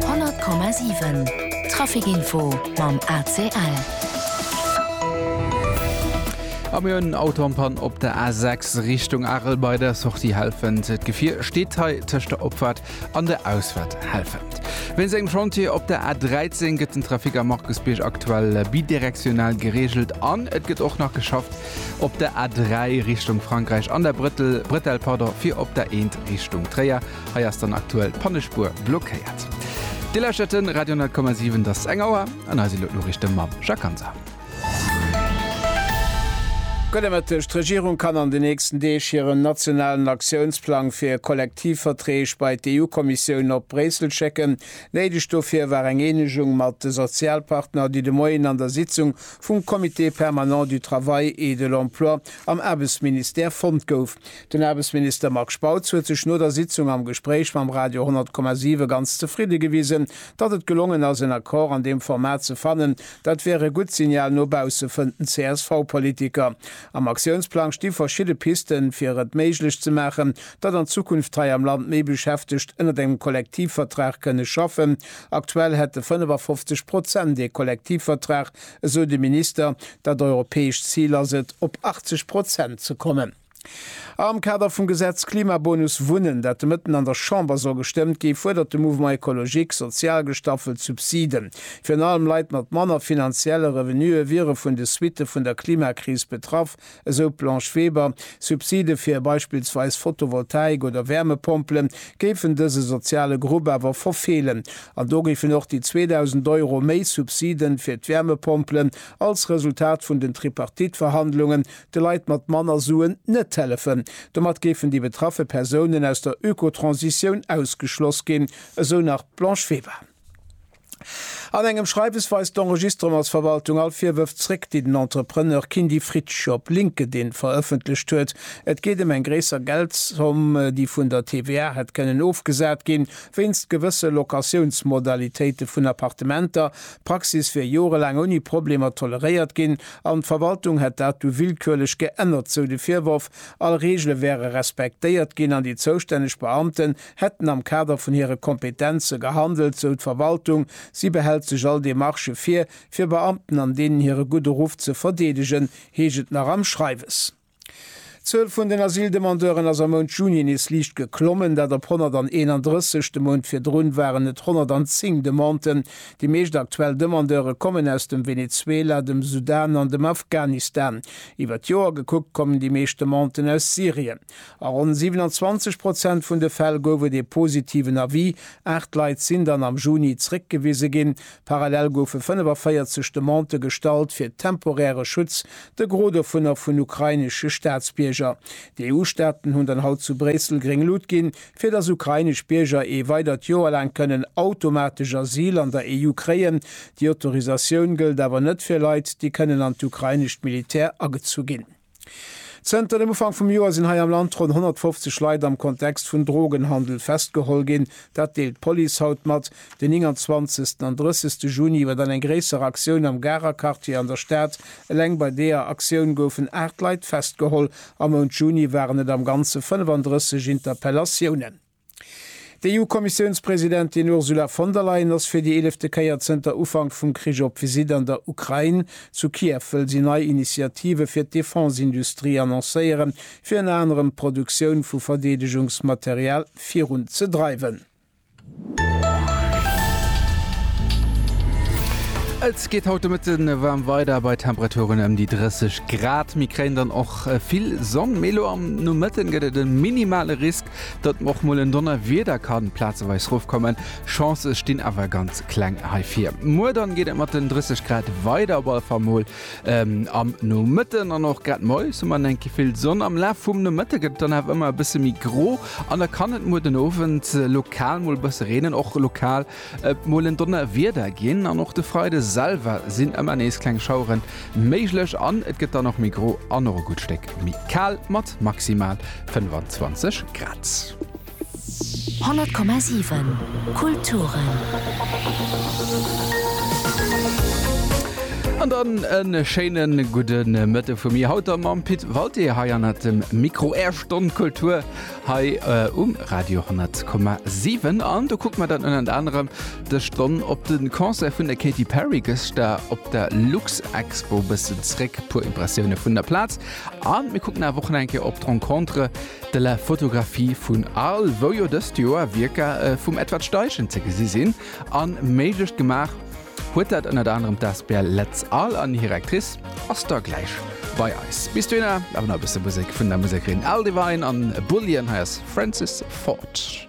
100,7 Trafic-Info mam ACL. A mir hunn Autopann op der A6 Richtung Arel bei der Sortie Helfent. D'Gefier steet hei tëscht der Opfahrt an der Ausfahrt Helfent. Wéinst engem Chantier op der A13 gëtt den Trafic am Markusbierg aktuell bidirektional gereegelt an et gëtt och nach geschafft op der A3 Richtung Frankräich an der Brëttel, Bretel pardon, fir op der Eent Richtung Tréier Hei ass dann aktuell d'Pannespuer blockéiert. Dir lauschtert de Radio 10,7. Et ass eng Auer an eis elo d'Noriichte mam Jacques Hansen. Gudde Mëtteg. D'Regierung kann an de nächsten Deeg hiren nationalen Aktiounsplang fir Kollektivverträg bei d'EU-Kommissioun op Bréissel schécken. Néideg dofir war eng Eenegung mat de Sozialpartner, déi de Moien an der Sitzung vum Comité permanent du travail et de l'emploi am Aarbechtsministère fonnt gouf. Den Aarbechtsminister Marc Spautz huet sech no der Sitzung am Gespréich mam Radio 10,7 ganz zefridde gewisen, datt et gelongen ass en Accord an deem Format ze fannen. Dat wär e gutt Signal no bausse, fënnt den CSV-Politiker. Am Aktiounsplang sti verschidde Pisten, fir et méiglech ze maachen, datt an Zukunft hei am Land méi Beschäftegt ënnert engem Kollektivvertrag kënne schaffen. Aktuell hätte 55 Prozent ee Kollektivvertrag, esou de Minister. Dat europäescht Zil ass et, op 80 Prozent ze kommen. Am Kader vum Gesetz Klimabonus Wunnen, dat de Mëtten an der Chamber soll gestëmmt gi, fuerdert de Mouvement Ecologique sozial gestaffelt Subsiden. Virun allem Leit mat manner finanzielle Revenuë wiere vun de Suitte vun der Klimakris betraff, esou d'Blanche Weber. Subside fir beispillsweis Fotovoltaik oder Wärmepompele géifen dëse soziale Grupp awer verfeelen. An do géifen och déi 2.000 Euro méi Subside fir d'Wärmepompelen als Resultat vun den Tripartite-Verhandlunge de Leit mat manner Suen net hellefen. Domat géifen déi betraffe Persounen aus der Ökotransitioun ausgeschloss ginn, esou nach d'Blanche Weber. An engem Schreiwes weist d'Enregistrementsverwaltung all Virwërf zréck, déi den Entrepreneur Kindy Fritsch op LinkedIn verëffentlecht huet. Et geet ëm eng gréisser Geldzomm, déi vun der TVA hätt kënnen ofgesat ginn, wéinst gewësse Locatiounsmodalitéite vun Appartementer. D'Praxis wier jorelaang ouni Problemer toleréiert ginn. An d'Verwaltung hätt dat du willkürlech geännert, sou de Virworf. All Reegele wäre respektéiert ginn an déi zoustänneg Beamten hätten am Kader vun hire Kompetenze gehandelt, sou d'Verwaltung. Si behält sech all Demarchë vir, fir Beamten an deenen hire gudde Ruff ze verdeedegen, heescht et nach am Schreiwes. D'Zuel vun den Asyldemandeuren ass am Mount Juni nees liicht geklommen, dat op 131. De Mount virdrun waren et 110 Demanden. Déi meescht aktuell Demandeure kommen aus dem Venezuela, dem Sudan an dem Afghanistan. Iwwer d'Joer gekuckt kommen déi meescht Demanden aus Syrien. A ronn 27 Prozent vun de Fäll gouf et ee positiven Avis. Aacht Leit sinn dann am Juni zréckgewise ginn. Parallel goufe 45 Demandë gestallt fir temporäre Schutz, de Gros dovunner vun ukrainesche Staatsbierger. D'EU-Staaten hunn dann haut zu Bréissel gréng Lut ginn, fir datt ukrainesch Bierger ee weidert Joer laang kënnen automatesch Asyl an der EU kréien. Déi Autorisatioun gëllt awer net fir Leit, déi kënnen an d'ukrainescht Militär agezu ginn. Zënter dem Ufank vum Joer sinn hei am Land ronn 150 Leit am Kontext vun Drogenhandel festgeholl ginn. Dat deelt d'Police haut mat. Den 29 an 30 Juni war dann eng gréisser Aktioun am Garer Quartier an der Stad. Eleng bei deeër Aktioun goufen 8 Leit festgeholl. Am Mount Juni waren et am Ganze 35 Interpellatiounen. D'EU-Kommissiounspresidentin Ursula von der Leyen ass fir déi eelefte Kéier zënter Ufank vum Krich op Visitt an der Ukrain. Zu Kiew wëll si nei Initiative fir d'Defense-Industrie annoncéieren, fir ënner anerem d'Produktioun vu Verdeedegungsmaterial virun ze dreiwen. Et geet haut de Mëtte waarm weider bei Temperaturen ëm déi 30 Grad. Mir kréien dann och vill Sonn, mee elo am Nomëtte gëtt et e minimale Risk Datt och mol en Donnerwieder kann plazeweis rofkommen, Chancë stinn awer ganz kleng heifir. Muer dann geet et mat den 30 Grad weider, op alle Fall mol am Nomëtten an och grad moies hu mer enk gi vill Sonn. Am Laf vum Nomëtte gëtt et dann awer ëmmer e bësse méi gro an da kann et muer den Owend lokal mol e bësse reenen, och lokal Et mol en Donnerwieder ginn an och de Freide selwer sinn ëmmer nees kleng Schauere méiglech an et gëtt dann och méi gro an och e gutt Stéck méi kal mat maximal 25 Grad. 100,7 Kulturen. An dann e schéine gudde Mëtte vu mir, haut da mam Pit Walté hei hannert dem Mikro. Är Stonn Kultur Hei um Radio 10,7 an do kucke mer dann ënnert anerem des Stonn op de Concert vun der Katy Perry gëschter op der Luxexpo e bëssen zréck, e puer Impressioune vun der Plaz a mir kucken awer och nach eng Kéier op d'Rencontre de la photographie vun Arles, wou jo dëst Joer Wierker vum Edward Steichen ze gesi sinn a méiglech gemaach Huet dat ënnert anerem d'Asbl Letz Al an hir Actrice ass da gläich bei eis. Bis dohinner awer nach e bësse Musek vun der Musekerin L. Devine an Bullion. Hei ass Francis Ford.